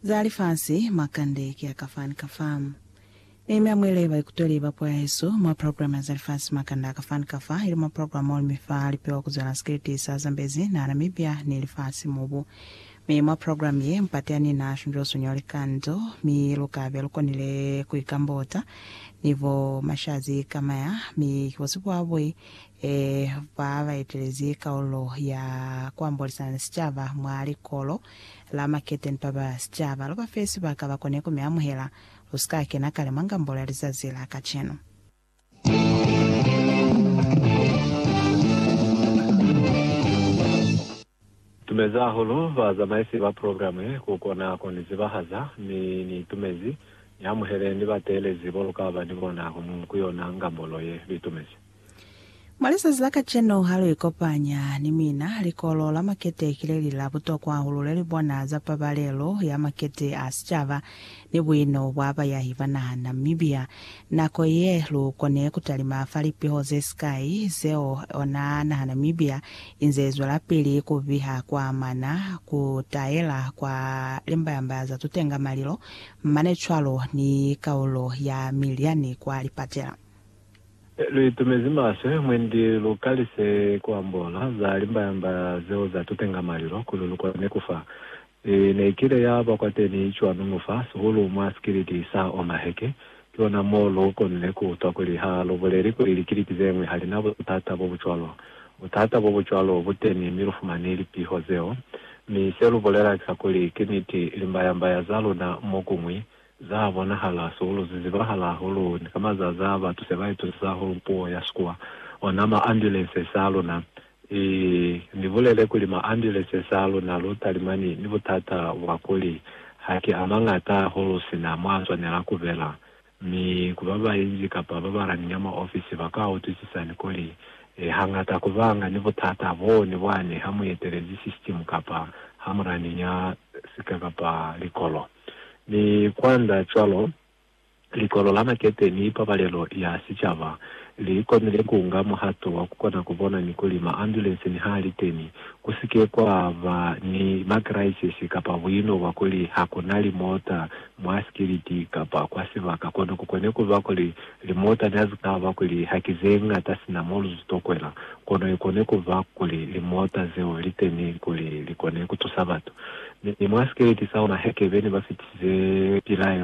Za lifasi mwa kande ki a ka fa ni ka fa. Nehemia a mwele baikuteli ba puo ya hesu mwa programe ya za lifasi mwa kande a ka fa ni ka fa, ili mwa programe mo li mi fa lipewa ku zwela sikiliti sa Zambezi na Namibia ni lifasi mubu. Mi mwa programe ye, mpati ya ni na shunzwa sunyo li kanzo, mi lu ka be lu konile ku ikambota ni bo mashazi kamaya, mi ki bo sipuabwi Ee, ba ba etelezi kaulo ya ku ambolisa ni sicaba mwa Likolo la Maketeni ba ba sicaba, lu ba fe sibaka ba kone ku mi amuhela. Lu si ka kena kale mwa ngambolo ya lizazi la kacenu. Tumezi hahulu bazamaisi ba program ye ku kona ku ni zibahaza, mi Ni tumezi Ni amuhele ni ba teelezi bo lu ka ba ni bona kono ku yona ngambolo ye. Li tumezi. Mwa lizazi la kacenu ha lu ikopanya ni mina, likolo la makete ki le li la butokwa hahulu le li bona za pabalelo ya makete a sicaba ni buino bwa bayahi ba naha Namibia, nako ye lu kone ku talima fa lipiho ze sikai zeo ona naha Namibia inze zwelapili ku biha kwa amana ku taela kwa limbayambaya za tutenga malilo, mane cwalo ni kaulo ya miliani kwa lipatela. Lu itumezi maswe mwendi lu kalise ku ambola za limbayambaya zeo za tutenga malilo kuli lu kone ku fa Mi nekile yaba kwateni cwanu mufa sihulu mwa sikiliti sa ona heke, kiona mo lu konile ku utwa kuli ha lu buleli kuli likiliti zeñwi ha lina butata bo bucwalo. Butata bo bucwalo bu teni mi lu fumani lipiho zeo. Mi se lu bulela ki sa kuli, ki niti, limbaya-mbaya za luna mokuñwi za bonahala sihulu ze zibahala hahulu ni ka mazazi a batu se ba itusisa hahulu puo ya Sikuwa, ona ma ambulances a luna I ni bulele kuli maambuleses a luna lu talimani ni butata bwa kuli haki a mañata hahulu sina mwa swanela ku bela, mi ku ba bainzi kapa ba ba lani nyama ofisi ba ka utwisisani kuli hañata ku banga ni butata bo ni bwani ha mu etelezi sisitimu kapa ha mu lani nya sika kapa likolo ni kwanda cwalo. Likolo la Makete ni Pabalelo ya Sicaba li konile ku nga muhato wa ku kona ku bona ni kuli maambulense niha li teni, ku si ke kwa ba ni makiraisisi kapa buino bwa kuli ha ku na limota mwa sikiliti kapa kwa sibaka. Kono ku kone ku ba kuli limota ne ha zi ka ba kuli ha ki ze ñata sina mo lu tokwela, kono i kone ku ba kuli limota zeo li teni kuli li kone ku tusa batu. Mi mwa sikiliti sa ona Hekebe ne ba fitisize pilaelo.